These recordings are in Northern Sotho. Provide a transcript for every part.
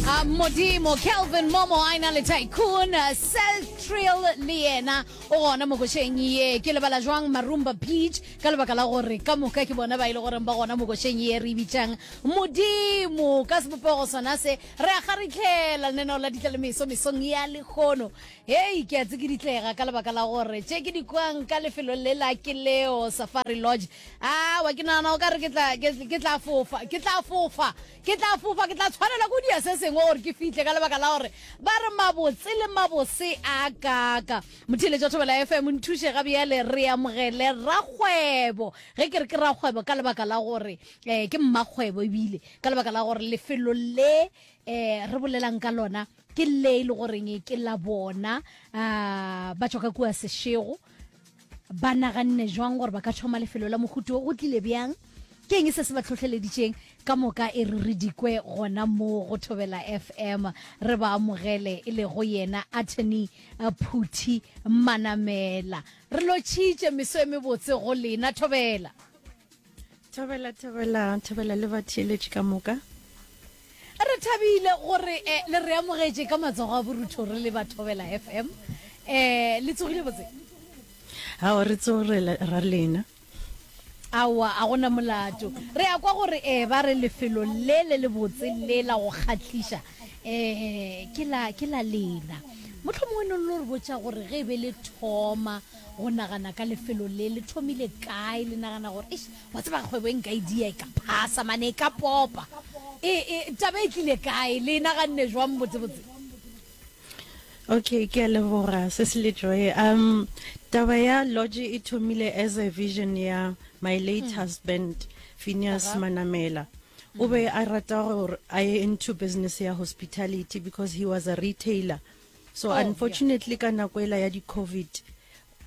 Ah, modimo kelvin momo a ena le tycoon celtrial le yena o gona mo košeng ye ke lebala jwang marumba beach ka lebaka la gore ka moka ke bona ba e le goreng ba gona mo košeng ye re e bitšang modimo ka sebopego sona se re a kgaritlhela lenaneo la ditlalemeso mesong ya lekgono hei ke a tsikiditlega ka lebaka la gore tše ke dikwang ka lefelong le la ke leo safari lodge Aowa, ke nagana o ka re ke tla, ke, ke tla fofa, ke tla fofa, ke tla fofa, ke tla tshwanela ko dia se sengwe gore ke fihle ka lebaka la gore ba re mabotse le mabose a kaka. Motheeletši wa Thobela FM, nthuše ga bjale re amogele rakgwebo. Ge ke re ke rakgwebo ka lebaka la gore eh, ke mmakgwebo ebile ka lebaka la gore lefelo le eh, re bolelang ka lona ke le e le goreng ke la bona ah, ba tšwa ka kua Sešego Ba naganne jwang gore ba ka thoma lefelo la mohuto wo? Go tlile bjang? Ke eng se se ba tlhohleleditšeng? Ka moka e re re dikwe gona mo go Thobela FM re ba amogele, e lego yena Attorney Phuthi Manamela. Re lotšhitše meso e mebotse go lena, Thobela. thobela thobela thobela le batheeletši ka moka re thabile gore eh, le re amogetše ka matsogo a borutho re le bathobela fm um eh, le tsogile botse ao re tsogela ra lena aowa a gona molato re ya kwa gore um ba re lefelo le le le botse le la go kgatliša um ke la lena motlho mongwe ne lo re botsa gore ge e be le thoma Go nagana ka lefelo le, le thomile kae, le nagana gore, Eish, wa tseba kgwebo e nka e dia, e ka phasa, mane e ka popa. E, e, taba e tlile kae, le e naganne jwang botsebotse? Okay, ke a leboga se se letšoe. Um, taba ya lodge e thomile as a vision ya my late hmm. husband, Phineas Manamela. o be a rata gore a ye into business ya hospitality because he was a retailer So unfortunately ka nako ela ya di Covid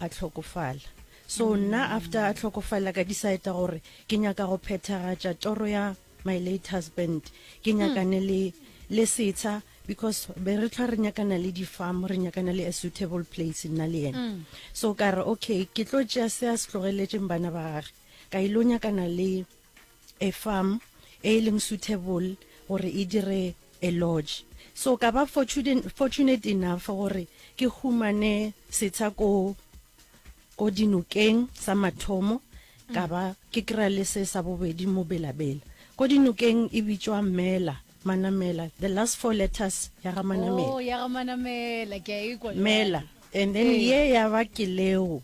a tlhokofala. So nna after a tlhokofala ka decide gore ke nyaka go phethagatša toro ya my late husband. Ke nyakane le le setsha because be re tlhwa re nyakana le di farm re nyakana le a suitable place nna le yena. So ka re okay ke tlo tšea se a se tlogeletseng bana ba gage ka ile go nyakana le a farm e e leng suitable gore e dire a lodge. So ka ba fortunate enough gore ke humane setsha ko ko dinokeng sa mathomo ka ba ke kry-a le se sa bobedi mo Belabela. Ko dinokeng e bitšwa Mela, Manamela, the last four letters ya ga Manamela. Oh, ya ga Manamela, ke a e kwa jwale. Mela, and then ye ya ba Keleo.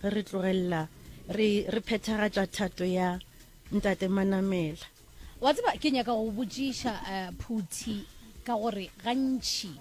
ge re tlogelela re re phethagatša thato ya ntate manamela wa tseba ke nyaka go botšiša uh, eh, phuthi ka gore gantši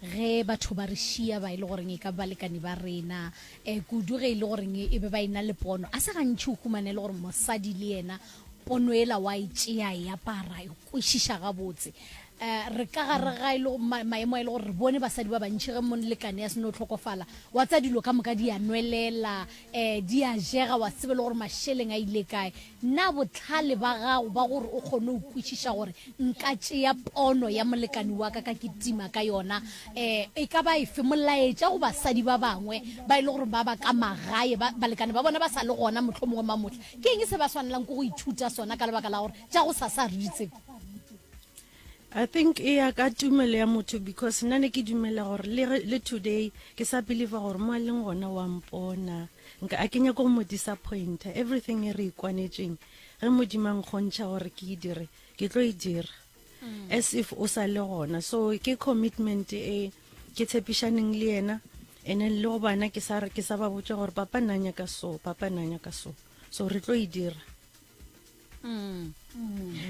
ge batho ba re šia ba e le goreng e ka balekane ba rena um kudu ge e le goreng e be ba e na le pono a se gantšhi o humane e le gore mosadi le yena pono ela wa e tšea e apara e kwešiša gabotse A re ka gare ga e le maemo a e le gore re bone basadi ba bantši ge molekane ya se no hlokofala, wa tsa dilo ka moka di a nwelela, um di a jega, wa tsebe le gore mašeleng a ile kae. Na bohlale ba gago ba gore o kgone go kwešiša gore nka tšea pono ya molekane wa ka ka kitima ka yona um e ka ba efe? Molaetša go basadi ba bangwe ba e le gore ba ba ka magae, ba balekane ba bona ba sa le gona mohlomongwe mamohla, ke eng se ba swanelang ke go ithuta sona ka lebaka la gore tša gosasa ga re di tsebe? I think e ya ka tumelo ya motho because nna ne ke dumela gore le today ke sa believer gore mo a leng gona wa mpona nka a ke nyako mo disappointa everything e re ikwanetseng ge modimang kgontšha gore ke e dire ke tlo e dira mm. as if o sa le gona so ke commitment e ke tshepišaneng le yena and then le go bana ke sa ke sa ba botša gore papa nanya ka so papa nanya ka so so re tlo e dira Mm.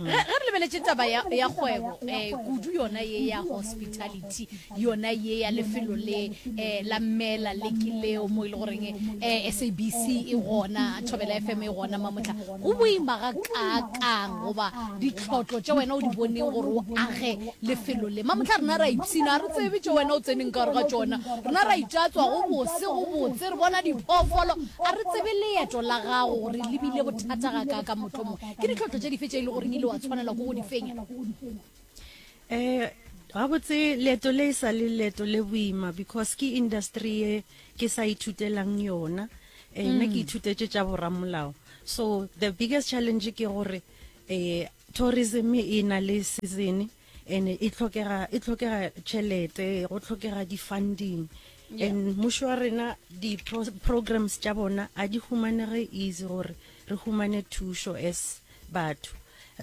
ge re lebeletse taba ya kgwebo um eh, kudu yona ye ya hospitality yona ye ya lefelo le um la mmela le ke leo mo e le goreng um eh, sabc e gona thobela f m e gona mamotlha go boima ga kakang goba ditlhotlo tse wena o di boneng gore o age lefelo le mamotlha rena ra ipshina re tsebe tse wena o tseneng ka gore ga tsona rena ra itatswa go bose go botse re bona diphoofolo a re tsebe leeto la gago gore lebile thata ga ka ka motlomo ke ditlhotlho tše dife tše e le goreng ile wa tshwanelwa ko go di fenya um gabotse leeto le e sa le leeto le boima because ke industry ye ke sa ithutelang yona um nna ke mm. ithutetse tša boramolao so the biggest challenge ke gore um tourism e na le season and e tlhokega e tlhokega tšhelete go tlhokega di-funding yeah. and mmušo wa rena di-programs tša bona a di humanege easy gore re humane thušo as batho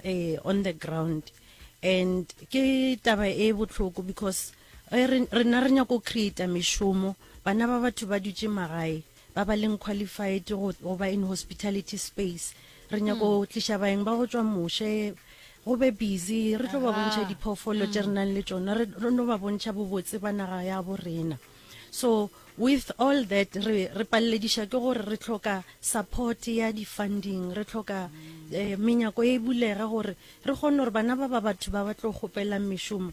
eh, on the ground and ke taba e botlhoko because eh, rena re nyako creata mešomo bana ba batho ba dutše magae ba ba leng qualified go, go ba in hospitality space re nyako hmm. tliša baeng ba go tšwa moše go be busy re tlo ba bontšha diphoofolo tše re hmm. nang le tšona re no ba bontšha bobotse ba naga ya bo rena so with all that re re pallediša ke gore re tlhoka support ya di-funding re tlhoka eh, menyako e bulega gore re kgone gore bana ba ba batho ba ba tlo kgopelang mešomo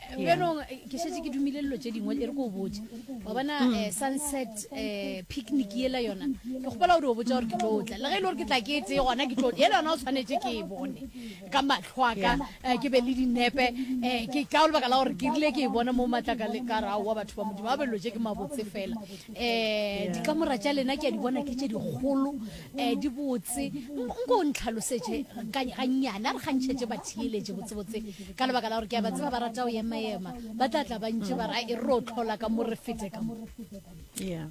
bjanong eh, ke šetse ke dumile dilo tše dingwe e re ko o botse wa bona mm. eh, sunset eh, picnic yela yona ke kgopela gore o botsa gore ke tlo tla le ge e le gore ke tla ke e tseye gona ke tlo yela yona o tshwanetse ke e bone ka matlho aka ke be le dinepe ke ka o lebaka la gore ke rile ke e bona mo matlaka le ka rao wa batho ba modimo ba belelo tse ke mabotse fela um dikamora tša lena ke a di bona ke tše dikgolo eh, di botse nko o ntlhalosetše gannyane a re kgantšhetše batheeletše botsebotse ka lebaka la gore ke a ba tseba ba rata go emaema ba tla tla bantše ba ra e re o tlhola ka mo re fete ka mo yeah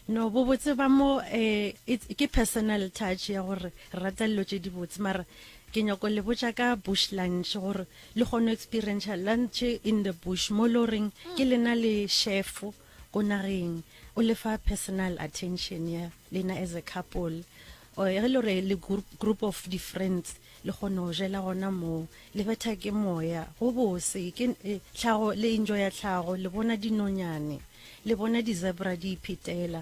no bobotse ba mo eh, ke personal touch ya gore rata lelo tše dibotse mara ke nyako le botša ka bush lunch gore le kgone experience lunch in the bush mo le goreng ke lena le shefo ko nageng o lefa personal attention ya lena as a couple or ge le re le group of di friends le kgone go jela gona moo le betha ke moya go bose ke eh, tlhago le enjoy ya tlhago le bona dinonyane le bona di-zebra di iphetela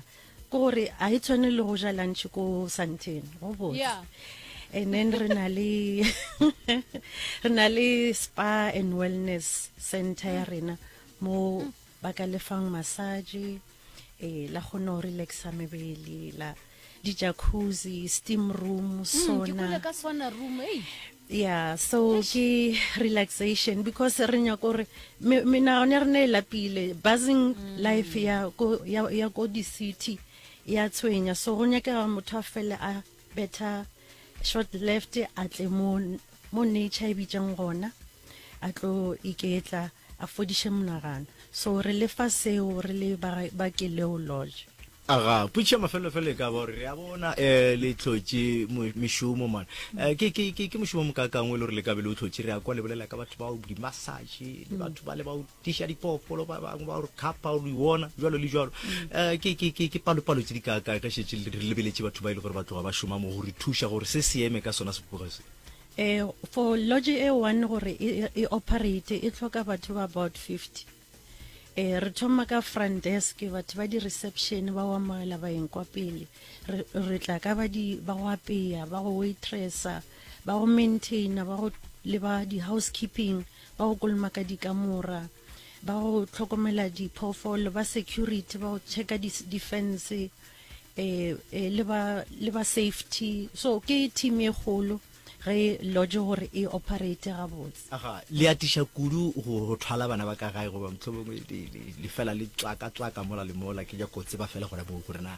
ke gore ga e tshwane le go ja lunch ko santeng go bose yeah. and then re na le re na le spa and wellness center ya rena mo Ba ka lefang massage, e, la kgona go relaxa mebele, la di jacuzzi, steam room, Mm, ke sauna. kwele ka swana room ei Yeah, so ke relaxation because re nyaka gore me- menagano ya rena e lapile. Buzzing life ya ko ya ya ko di-city ya tshwenya. So go nyakega motho a fele a better short left a tle mo mo nature e bitšang gona a tlo iketla a fodiše monagano so re lefa seo re le ba keleo lodge aga putšha mafelelofelo e ka ba gore re a bona um eh, le tlhotše mešomo mana eh, ke mošomo mokakangwe e le gore le kabe le o tlhotše re ya kwa lebolela ka batho bao dimassage le batho ba le bao tiša diphoofolo ba bangwe ba gore thapa o lo iwona jalo le jalo um ke- ke- ke- ke palopalo tse di kaakae ge šetse le- re lebeletse batho ba e le gore ba tloga ba šoma mo go re thuša gore se se eme ka sona sepoka se Eh, for lodge e one gore e, e- e operate e tlhoka batho ba about 50 eh re thoma ka front desk batho ba di-reception ba wa moela baeng kwa pele re, re tla ka ba di ba go apeya ba go waitressa ba go maintaina ba go le ba di-housekeeping ba go kolomaka dikamora ba go tlhokomela diphoofolo ba security ba go checka defense eh, eh, le ba le ba safety so ke team e kgolo ge lodge gore e operate gabotse aga le atiša kudu go thwala bana ba ka gae goba motlhomongwe le fela le tswaka tswaka mola le mola ke ja kotse ba fela gona moo gore na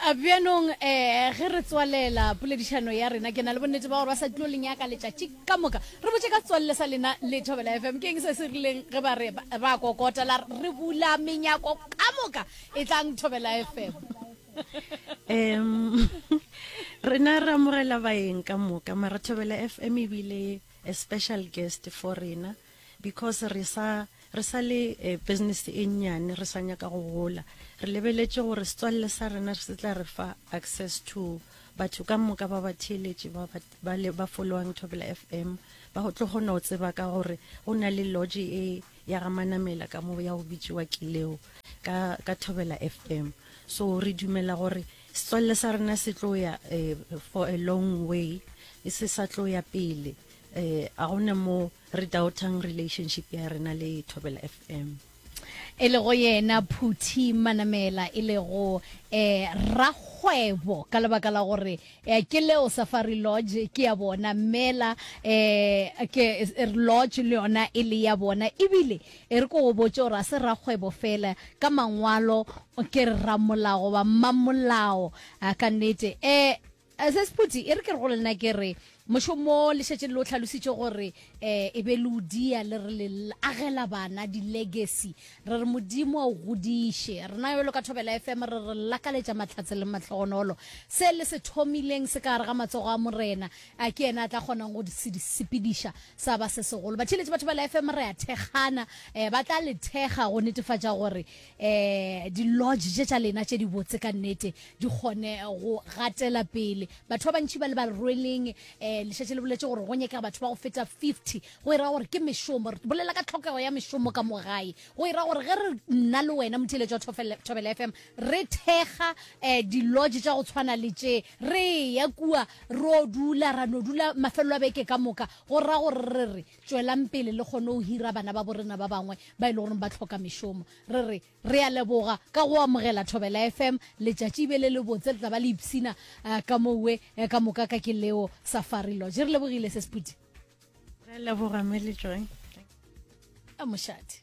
A Bjanong eh, ge re tswalela poledišano ya rena, ke na le bonnete ba gore ba sa tlo le nyaka letšatši ka moka. Re botše ka setswalle sa lena le Thobela FM, ke eng se se rileng ge ba re ba, ba kokota la re, re bula menyako ka moka, e tlang Thobela FM. Em, rena re amogela baeng ka moka, mara Thobela FM e bile a special guest for rena. Because re sa re sa le business e nnyane re sa nyaka go gola, re lebeletše gore setswalle sa rena se tla re fa access to batho ka moka ba batheeletši ba ba le ba followang Thobela FM ba go tlo kgona go tseba ka gore go na le lodge e ya ga Manamela ka mo ya go bitšiwa Kileo ka ka Thobela FM. So re dumela gore setswalle sa rena se tlo ya for a long way se sa tlo ya pele eh a gona mo re doubtang relationship ya rena le thobela fm e lego yena phuthi manamela e lego eh rakgwebo ka lebaka la gore eh, ke leo safari lodge ke ya bona mela eh ke eh, lodge le yona e le ya bona ebile e re ko go botse gore a se rakgwebo fela ka mangwalo ke re ramolago ba mmamolao a ka nnete eh Ese Sephuti, e re ke re go lena ke re, mošomo le šetše le o tlhalositše gore um e be le o dia le re le agela bana di-legacy. Re re Modimo a o godiše. Rena jalo ka Thobela FM re re lakaletša mahlatse le mahlogonolo. Se le se thomileng se ka gare ga matsogo a Morena, a ke yena a tla kgonang go se di sepediša sa ba se segolo. Batheeletši ba Thobela FM re a thekgana, um ba tla le thekga go netefatša gore eh di-lodge tše tša lena tše di botse ka nnete di kgone go gatela pele batho ba bantši ba le ba rweleng um eh, lešatši le boletse gore go nyekega batho ba go feta 50 go e ra gore ke mešomo re bolela ka tlhokego ya mešomo ka mo gae go e ra gore ge re nna le wena motheletso wa thobela fm re thekga um di-lodge tša go tshwana le tše re ya kua ro dula ra no dula mafelelo a beke ka moka go ra gore re re Tšwelang pele le kgone go hira bana babo rena ba bangwe ba e le gore ba tlhoka mešomo. Re re, Re a leboga ka go amogela Thobela FM. Letšatši e be le lebotse, le tla ba le ipshina ka mo we ka moka ka ke leo Safari Lodge. Re lebogile, Ses Phuti. Re a leboga, Mme Lejoe. Mošate.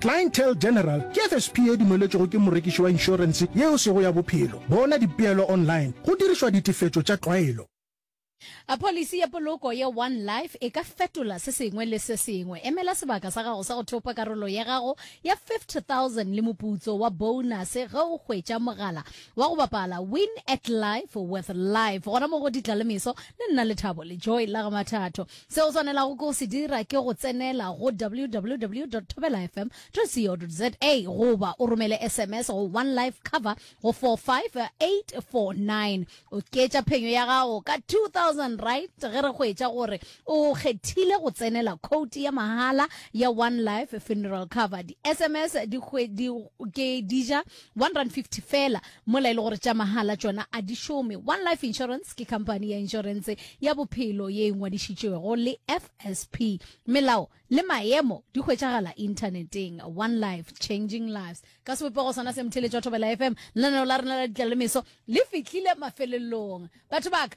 Clientele General ke FSP e dumeletšwego ke morekiši wa inšorense yeo sego ya bophelo. Bona dipeelo online go dirišwa ditefetšo tša tlwaelo. A Pholisi ya poloko ya One Life e ka fetola se sengwe le se sengwe? Emela sebaka sa gago sa go thopa karolo ya gago ya 50,000 le moputso wa bounase ge o hwetša mogala wa go bapala Win at Life with Life gona mo go Ditlalemeso le Nna Lethabo le Joy la ga Mathatho. Se o swanelago ke go se dira ke go tsenela go www dot thobela fm dot co dot za goba o romele sms go One Life Cover go 45849. Oketša phenyo ya gago ka R2,000 ge re hwetša gore o kgethile go tsenela khoutu ya mahala ya One Life Funeral Cover. Di-SMS di hwe, di, ke di ja One rand fifty fela, mola e le gore tša mahala tšona a di šome. One Life Insurance ke khamphani ya inšorense ya bophelo ye e ngwadišitšwego le FSP. Melao le maemo di hwetšagala inthaneteng. One Life, changing lives. Ka sebopego sona se, Mtheletši wa Thobela FM, lenaneo la rena la Ditlalemeso le fihlile mafelelong. Batho ba ka,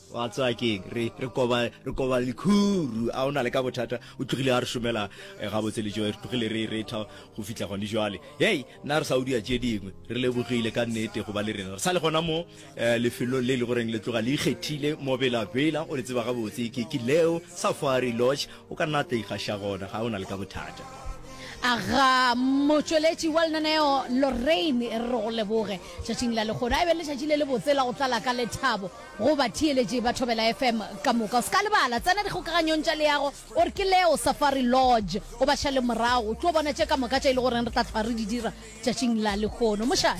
wa tswa keng re re koba re koba likhuru a ona le ka bothata o tlogile a re šomela eh, ga botse le joe re tlogile re re tha go fitla gone jwale hey na re sa o dia tše dingwe re lebogile ka nnete go ba le rena re sa le gona mo eh, lefelong le le goreng le tloga le ikgethile mo bela bela o le tseba ga botse ke ke leo safari lodge o ka nna tla ikgaša gona ga ona le ka bothata aga motšweletši wa lenaneo lorraine re go leboge tšatšing la legono a e be le tšatši le le botse la go tlala ka lethabo Go batheeletši ba Thobela FM ka moka, o se ka lebala, tsena dikgokaganyong tša leago o re ke Leo Safari Lodge, o ba šale morago, o tlo bona tše ka moka tše e lego goreng re tla hlwa re di dira tšatšing la lehono. Mošate.